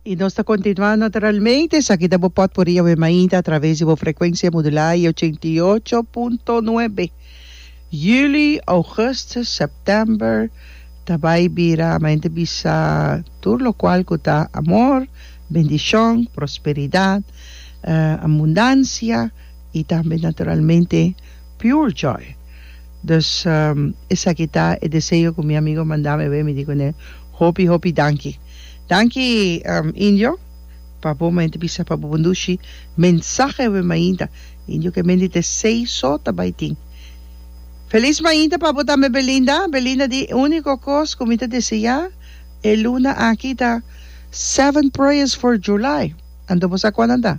I nos ta kontinuá naturalmente. Esaki ta bo pòtpurri awe mainta atraves di bo frekuensia modulá i ochenta i ocho punto nuebe. Juli, Ougustus, September ta bai bira mainta bisa tur lokual ku ta amor, bendishon, prosperidat, abundansia i tambe naturalmente. Pure joy. Dus esaki ta e deseo ku mi amigo mandami awé, mi di kuné, Hopi, hopi danki. Danki, Indio, pa bo ma yanta bisa pa bo bundushi mensahe awé mainta. Indio ke mende te sei so ta bai tin. Felis mainta pa bo tambe Belinda. Belinda di, E uniko kos ku mi ta deseá e luna aki ta Seven prayers for July. Anto bo sa kuandan ta?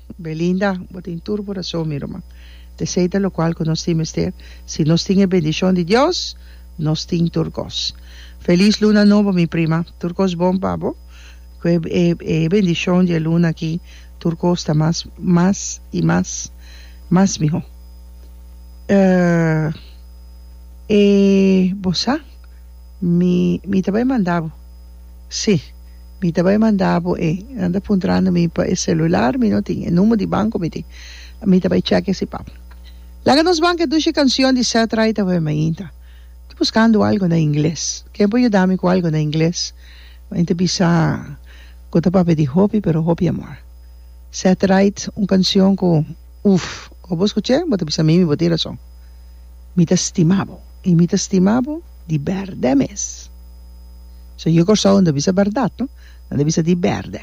Belinda, Bo tin tur bo rason mi ruman. P'esei ta locual cu nos tin mester, si nos tin e bendicion di Dios, nos tin tur cos. Feliz Luna Nobo mi prima, tur cos bon pa bo. Cu e e bendicion di e luna aki tur cos ta mas mas y mas mas miho. Uh, e bo sa mi mi ta bay manda bo, si. Mi ta bai manda bo e. Nan ta puntrando mi pa e celular, mi no tin. E number di banco mi tin. Mi ta bai check esi pap. Laga nos banca e dushi cancion di Seth Ray ta bai mainta. Ta buscando algo na ingles. Ken por yuda mi cu algo na ingles? Mi ta bisa cu ta papia di hopi, pero hopi amor. Seth Right, un cancion cu uff. Ora bo scucha e, bo ta bisa mimi bo tin razon. Mi ta stima bo. Y mi ta stima bo. di berde mes so yo Kòrsou no ta bisa bèrdat no nan ta bisa di berde.